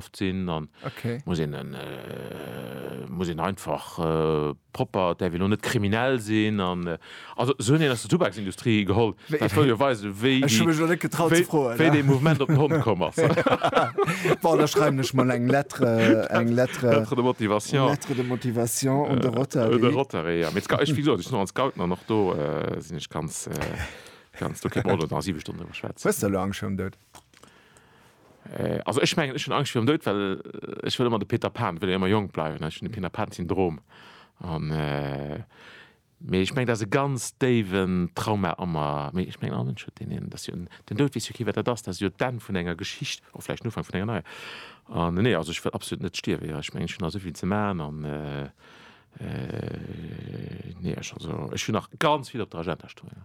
oft sinn an okay muss een en muss een einfach propper däerf een lo net kriminell sinn an also esou hunn een aus der Tubaksindustrie geholl dat wëll jo weisen wéi ech hunn mech nach net getraut ze froen wéi dee Mouvement op den Hond komm ass bon da schreiwen ech mol eng Lettre eng Lettre lettre de motivation lettre de motivation un de Rotary un de Rotary jo mee ech wéi gesot ech sinn och an d'Scouten an och do sinn ech ganz ganz ok bon elo nach 7 Stonnen driwwer schwätzen hues de elo Angscht virun Doud? Also ech mengen ech hunn Angscht virum Doud, well ech wëll ëmmer de Peter Pan, wëll ëmmer jonk bleiwen. Ech hunn de Peter Pan Syndrom an mee ech mengen dat ass e ganz déiwen Trauma a mer. Mee ech mengen all Mënsch huet deen een, dass jo den Doud weess jo kee wat dat ass, dat ass jo d'Enn vun enger Geschicht, och vläicht den Ufank vun enger neier. An nee, also ech wëll absolut net stierwen, jo ech mengen ech hunn nach esou vill ze maachen an nee ech also ech hunn nach ganz vill op der Agenda stoen.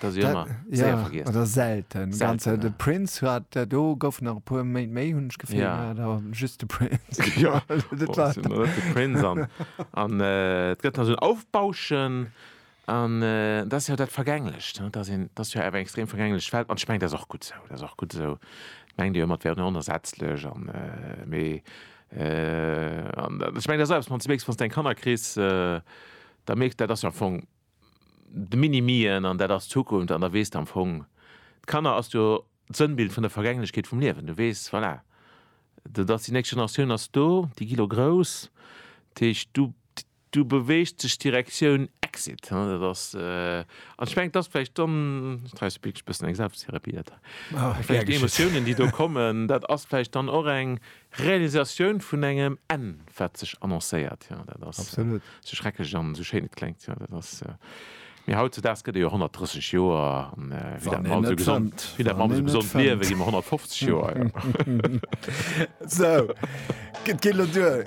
Dat ass jo ëmmer séier vergiess. Oder selten. selten ganz, ja. De Prince hat dat do gouf nach e puer Méint méi hunn ech gefillt ja. da just de Prince. ja, dat oh, war de Prince an an äh, et gëtt nach so un Aufbauschen an äh, dat ass jo dat vergänglecht dat ass een dat ass jo awer extrem vergänglecht Welt an schmengt dat och gutt sou dat ass och gutt sou meng Dir mat wären onersetzlech an äh, méi äh, an schmengt dat selbst man ze méchs wann deng Kanner kris äh, da mécht dat ass am Fong de Mini-Mien an dat ass d'Zukunft an da weess de am Fong, d'Kanner ass jo d'Sënnbild vun der Vergänglechkeet vum Liewen. Du weess, voilà, dat ass déi nächst Generatioun ass do, déi gi lo grouss, dat heescht du du beweegt sech Direktioun Exit, hein, dat ass an ech mengen et ass vläicht dann, ech treiwes e béchs bëssen eng Selbsttherapie dat hei, vläicht déi Emotiounen déi do kommen, dat ass vläicht dann och eng Realisatioun vun engem Enn, wat sech annoncéiert. Jo, dat ass esou schrecklech an esou schéin et kléngt. Jo, dat ass, mee hautzedaags gëtt ee jo 130 Joer an wéi dat mer all esou gesond, wéi dat mer all esou gesond liewen, gi mer 150 Joer. Esou, et geet elo duer.